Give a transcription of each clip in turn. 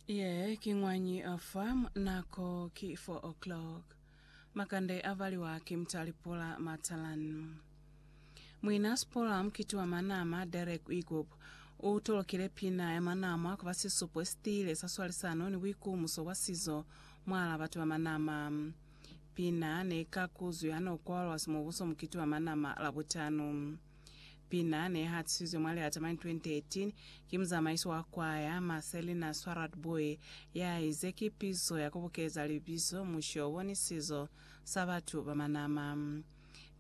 Ye ki ñwañi fa mu? Nako ki 4 o'clock. Makande a valiwa ki Mtalipola Matalan. Muina Spola mukiti wa manama Derek Wigop u tolokile pina ya manama ku ba sisupo si tiile sa swalisano ni buikumuso bwa sizo mwala batu ba manama. Pina ne ka kuzwi ha no kwalwa Simubuso mukiti wa manama Labutano. Pina ne hatisizwe mwa Lilata Mine 2018 ki muzamaisi wa kwaya, Marcelina Swarad-Booi, ya ize ki pizo ya ku bukeza libizo mushobo ni sizo sa batu ba manama.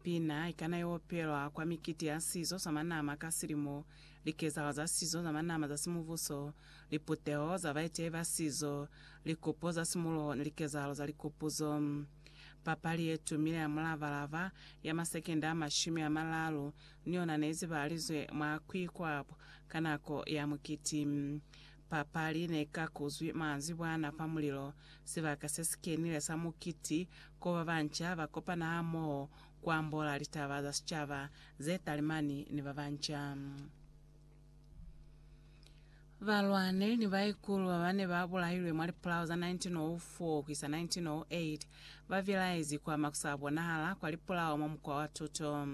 Pina i kana ya opelwa kwa mikiti ya sizo sa manama ka silimo, likezahalo za sizo za manama za simubuso, liputeho za baetehi ba sizo, likupo za simuloho ni likezahalo za likupuzo. Papali ye tumile ya mulava-lava ya masekende a mashumi a maralu ni yona ne izibahalizwe mwa Quiquap ka nako ya mukiti. Papali ne i kakuzwi manzibwana fa mulilo, sibaka se si kenile sa mukiti ko ba banca ba kopana hamoho ku ambola litaba za sicaba, ze talimani ni ba banca. Balwaneli ni baikulu babane babulailwe mwa lipulao za 1904-1908 babilaezi kwa makusabonahala kwa lipulao mwa mukwa wa tuto.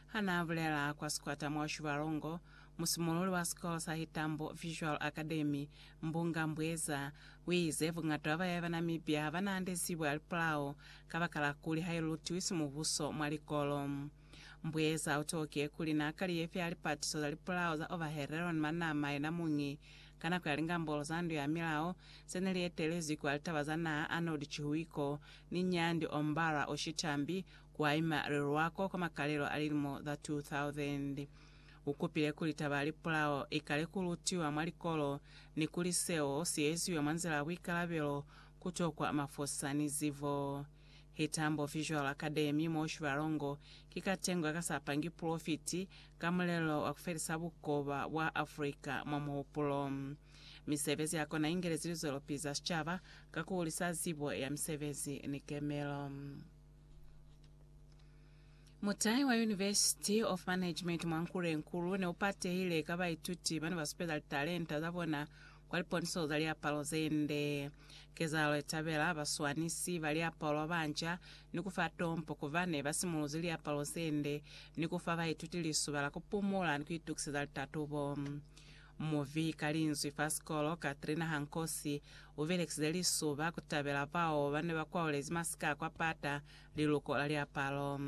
Hanaabulela kwa sikwata mwa Ushibalongo, musimululi wa sikolo sa Hitambo Visual Academy, Mbunga Mbweza, uize buñata bwa bayaye ba Namibia habanaande zibo ya lipulao kabakala kuli hailutiwi simubuso mwa likolo. Mbuyeza u toke kuli na kali ye fya lipatiso za lipulao za Overheeron Manama yena muñi. Ka nako ya lingambolo za Ndu ya Milao ze ne li etelezwi kwa litaba za naha, Arnold Chihuiko ni Nyandi Ombara Oshitambi kwa ima Riruako kwa makalelo a lilimo za 2000, u kupile kuli taba ya lipulao i kale ku lutiwa mwa likolo ni kuli seo si eziwe mwa nzila ya buikalabelo, ku tokwa mafosisa ni zibo. Hi Tambo Visual Academy mo Shibalongo ki katengwa ka sa pangi pulofiti ka mulelo wa ku felisa bukoba bwa Africa mwa muhupulo. Misebezi ya kona ingelezi lizwelopizi za sicaba ka ku hulisa zibo ya misebezi ni kemelo. Mutai wa University of Management mwa Nkulenkulu ne u patehile ka baituti ba ne ba supeza litalenta za bona kwa liponiso za liapalo ze nde. Kezahalo ye tabela ba swanisi ba liapalo ba nca ni ku fa tompo ku bane ba simuluzi liapalo ze nde ni ku fa baituti lisuba la ku pumula ni ku itukiseza litatubo. Muvi ka linzwi fa sikolo Katrina Hankosi u belekize lisuba ku tabela bao ba ne ba kwaulezi masika a kwa pata liluko la liapalo.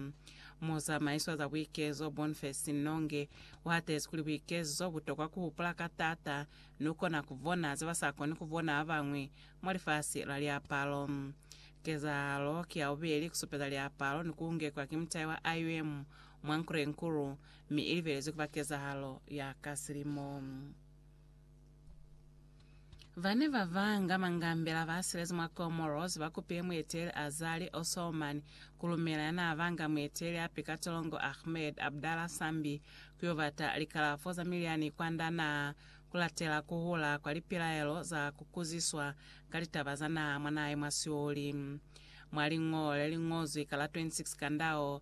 Muzamaiso wa za buikezo Bonface Nnonge u hatezi kuli buikezo bu tokwa ku hupula ka taata Lu kona ku bona ze ba sa koni ku bona ba bañwi mwa lifasi la liapalo. Kezahalo ki ya bubeli ku supeza liapalo ni ku ngekwa ki mutai wa IUM mwa Nkurenkulu, mi i libelezwi ku ba kezahalo ya ka silimo. Ba ne ba banga mangambela ba silezi mwa Comoros ba kupile mueteli Azali Osouman ku lumela ya naa banga mueteli api ka tolongo Ahmed Abdallah Sambi Ku yo bata likalafo za milyani kwand'a naha ku latela ku hula kwa lipilaelo za ku kuziswa ka litaba za naha mwa naha ye mwa sioli. Mwa liñolo le li ñozwi ka la 26 Kandao,